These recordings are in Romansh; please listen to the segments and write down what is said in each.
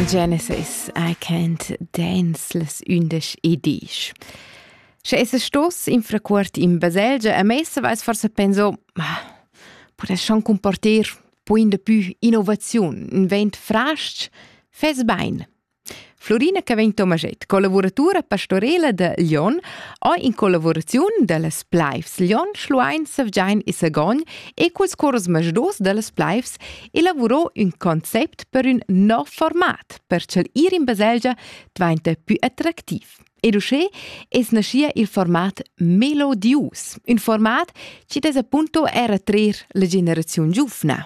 Genesis, I can't dance les undisch e disch. Sche es stos infracuort in baselgia a messa vais forse penso, ma podes schon comporter poi in pü innovaziun, un vent frasc, fes bein. Florina Caventomaget, collavuratura pastorela da Lyon, ha in collavuraziun dallas Pleifs Lyon, Schluein, Sevgein e Sagogn e culs cors masdos dallas Pleifs elavurò ün concept per ün nov format, per ch'el ir in baselgia dvainta più attractiv. Ed uschè es naschia il format Melodius, ün format chi'd es appunto era trer la generaziun giuvna.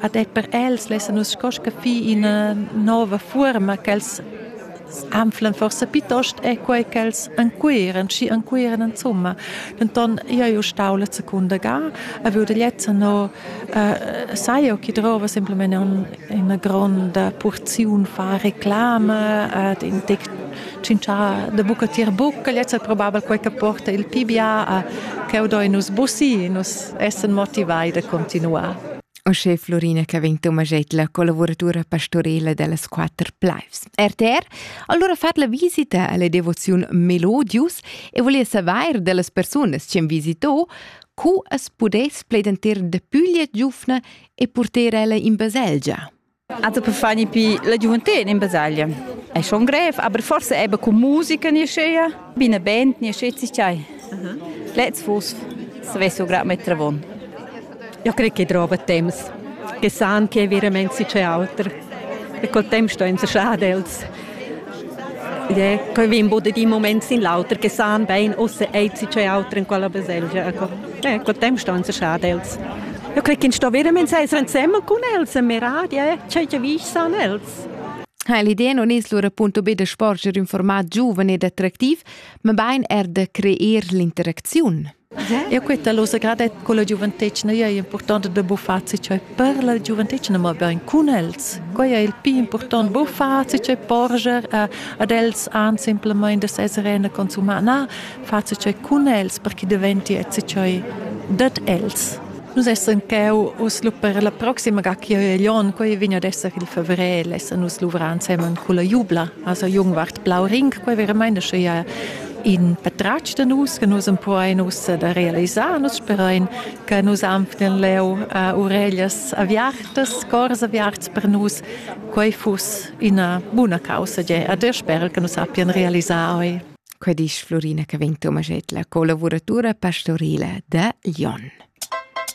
Ad er per els lessan nus sco scaffir ina nova fuorma ch'els anflan forsa piuttost è quei ch'els ancuiran, schi ancuiran insomma. Denton io eu stau la secunda ga, a veude lezza no uh, sai io chi drova semplicemente un, una gronda porziun fa reclama ad in tec cincià de buca tier bucca, lezza è probabel quei che porta il PBA a che do in us bussi, in us essan motivai da continuar. Uschè Florina Cavin Tomaget, la collaboratura pastorela dellas quatter plaivs. RTR, allora fat la visita alla devoziun Melodius e volia saver dellas personas che visitò cu as pudess pledentir de puglia giufna e purter ella in baselgia. Hatte per fare pi la gioventù in basaglia. È schon grev, aber forse eben con musica nicht schön. Bin eine Band nicht schön ist ja. Letzt Fuß, das weißt du gerade mit Travon. Ich kriege keine Drogenthemas. Che san che veramente sei alter. E col tempo sto in schadels. Ed è cheu vegn bod ad in moment sin l'auter che san bein ussa ezi tgei auter en quella baselgia. Ecco, eh, col tempo sto uns schad els. Io credo che sto veramente essere insieme con els e mirati, eh, ciò che vi san els. Ha l'idea non es lura appunto be da sporger in format giuven ed attractiv, ma bein er da creer l'interacziun. E quetta lo sagradett co la giuventetgna ei impurtonta da buffar se cioè per la giuventetgna ma bein cun els. Quei ei il pli impurtont buffar se cioè porger a, ad els an simpelmaing da seser e na consumar. Na, far se cioè cun els perché diventi et se cioè dad els. Nus essan cheu uss lu per la proxima ga chi ei on, quei vegn ad esser il fevrel, essan nus luvrar ensemen culla jubla, also Jungwart Blau Ring, quei veramente sche ja in patratg da nus che nus empuoin ussa da realisar nus sperain che nus anflen leu uh, ureglias aviartas cors aviarts per nus quei fuss ina buna causa ge a der sper che nus sappian realisar oi Quei disch Florina che vegn Tomaschetla, collavuratura pastorile da Lyon.